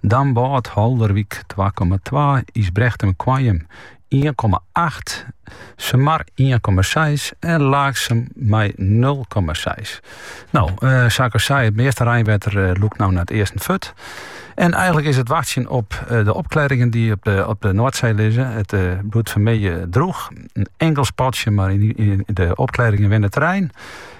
Damwâld, Haulerwyk, twa komma twa, Ysbrechtum, Koarnjum, ien komma acht, Sumar, ien komma seis en Laaksum mei nul komma seis. No, sa ik al sei, it measte reinwetter lûkt no nei it easten fuort. En eigenlik is it wachtsjen op de opklearringen dy't op de, op de Noardsee lizze. It bliuwt fermiddei droech. In inkeld spatsje mar en de opklearringen winne terrein.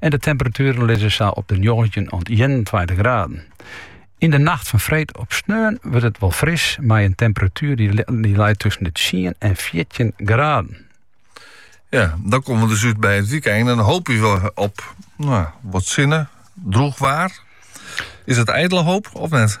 En de temperatueren lizze sa op de 19 oant 21 graden. Yn de nacht fan freed op sneon wurdt it wol fris mei in temperatuer die leit tussen de 10 en 14 graden. Ja, dan komme we dus út by it wykein. En dan hoopje we op no, wat sinne, droech waar. Is dat idele hoop of net?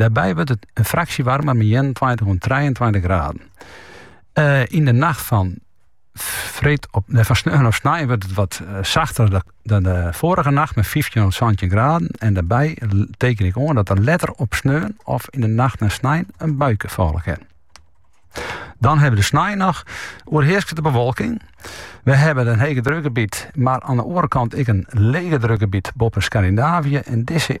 Dêrby wurdt it in fraksje warmer mei ienentweintich oant trijeentweintich graden. Eh, yn de nacht fan, freed op, nee, fan sneon op snein wurdt it wat eh, sachter dan de foarige nacht mei 15 oant 17 graden. En dêrby teken ik oan dat der letter op sneon of yn de nacht nei snein in buike falle kin. Dan hawwe we de snein noch, oerhearsket de bewolking. We hawwe in hegedrukgebiet, mar oan de oare kant ek in legedrukgebiet boppe Skandinavië. En dizze